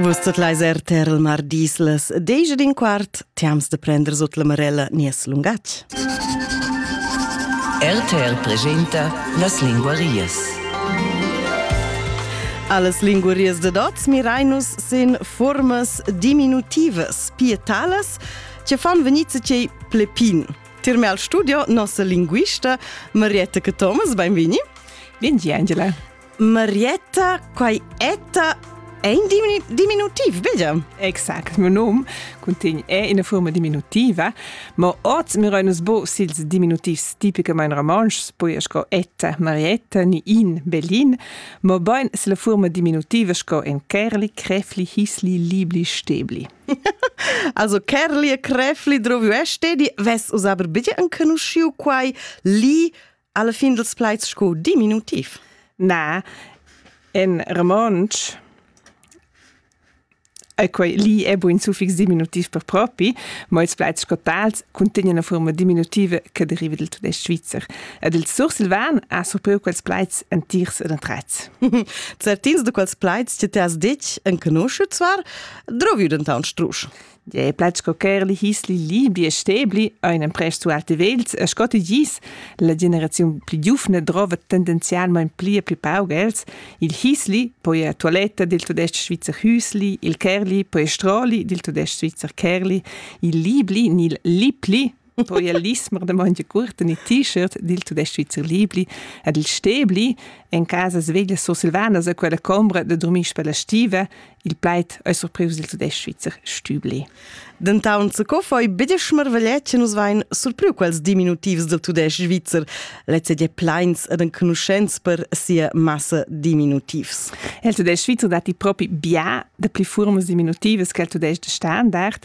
Vus tot leis er ter il mar dislas, deja din quart, tiams de prender sut la marella nies lungatg. RTL presenta las linguarias. Alles linguarias de dots mirainus sin formas diminutivas, pietalas, che fan venice cei plepin. Tirme al studio nossa linguista Marietta Thomas, benvini. Bindi, Angela. Marietta, quai etta è in diminu diminutiv, vedi? Exact, mio nom contegn è ina forma diminutiva, ma oz mi reunas bo sils diminutivs tipicamain romontschs, poi sco etta Marietta ni in Berlin, ma bain se la forma diminutiva sco en Kerli, Crefli, Hisli, Libli, Stebli. also Kerli e Crefli droviu è stedi, ves us aber bitte encanusciu quai li Alla fin dels plaids sco diminutiv. Na, in romontsch e quei lì è buin suffix diminutiv per propi, ma ils plaids scotals cuntegnan una forma diminutiva che deriva del tudesc svizzer. Ed il sursilvan ha surpriu quels plaids entirs ed întrets. Certins de quels plaids che ti has detg enconosciuts var, droviu denton strusch. Je plaz co Kerli hisli libi e stebli, einen presto alte Wels, e scotti gis, la generaziun pli giufna drova tendenzialmain pli e pli pauc els, il hisli, poi a toiletta del tudestg svizzer hüsli, il kerli, poi stroli del tudestg svizzer kerli, il libli, nil lipli, Poi el lismer de monte curten e t-shirt dil tudesc Svizzer Libli ed il Stebli en casas veglias sursilvanas a quella combra de dormir per la stiva il plait ei surprius dil tudesc Svizzer Stübli. Dentaun co foi betg marvegliet che nus vein surpriu quels diminutivs del tudesc Svizzer, lezze de pleins ed enconuschents per sia massa diminutivs. Il tudesc Svizzer dati propi bia de pli furmas diminutivas che il tudesc de standard,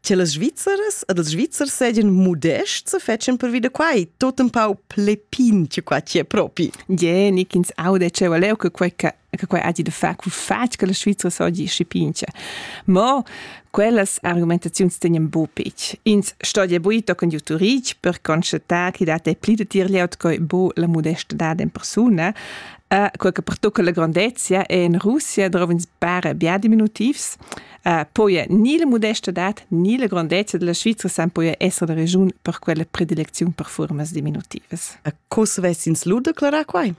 Che las Svizzeres ed els Svizzers seigien modests e fetschen per vida quai, tot un pau plepin che qua ci è propi. Ie, nick ins aude ce valeu che quei che che quei agi da far cul fatg che la Svizra sogi scipince. Mo quellas argumentaziuns tenien bu pic. Ins stogie buito con juturic per constatar chi dat ei pli da tir leut coi bu la modestadad in persona, a quel che pertucca la grandezia e in Russia drovens bare bia diminutivs, Uh, poi ni la modestadad ni la grandezza della Svizra san poi essere la regiun per quella predilezione per formas diminutivas. Co se ves ins lu declarar quai?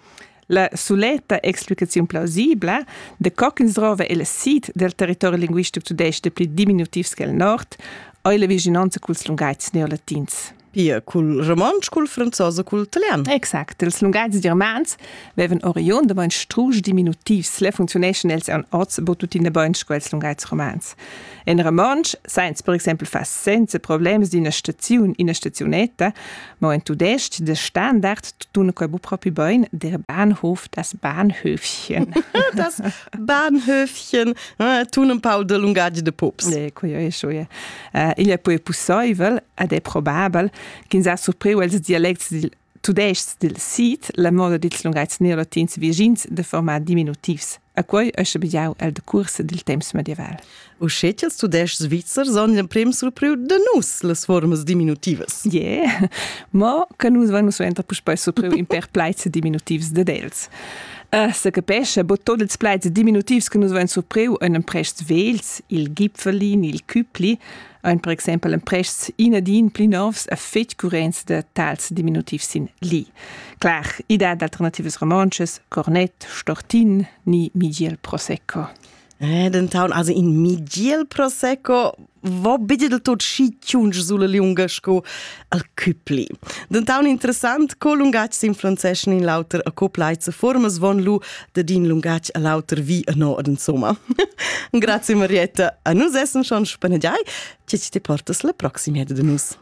La soleta explicazione plausibla de co ch'ins drova il sit del territorio linguistico tudesco pli diminutivs che il nord, è la vicinanza culs lungaits neolatins. pia cul romontsch, cul franzos e cul italian. Exact, ils lungais germans vevan oriund da bain strusch diminutivs, le funzioneschan els an oz bo tuttina bain sco els lungais romans. En romontsch, sainz per exempel far senza problems d'ina staziun, ina stazionetta, ma en tudestg de standard tutuna quai bu propi bain der Bahnhof das Bahnhöfchen. das Bahnhöfchen, äh, tun un pau de lungaggi de pops. E, quio e, schoie. Igl è poi pussaivel ed è probabel ch'ins ha surpriu els dialects dil tudestg dil sid la moda dils lungatgs neolatins vischins de format diminutivs. A quei ei schabegiau el decurs dil temps medieval. Uschè ch'ils tudestgs svizzers han l'emprim surpriu da nus las formas diminutivas. Yeah, mo che nus vein suenter puspei surpriu in per plaids diminutivs ded els. Uh, se capesce, bod tot ils plaids diminutivs che nus vain surpriu in emprests vels, il gipfelin, il cüpli, ein per exempel emprests inadin pli novs a fetg currenz da tals diminutivs sin li. Clar, idea d'alternativas romances, cornet, stortin, ni Miguel Prosecco. Eh, dentant also in migiel prosecco vo bidi del tot schi ciunch sulla liunga sco al Küpli. Dentant interessant co lungatg sin francés in l'auter accoplait se formas von lu de din lungatg a l'auter vi a norden somma. Grazie Marietta, a nus essen schon spaneggiai, ci ti portas la proximia de nus.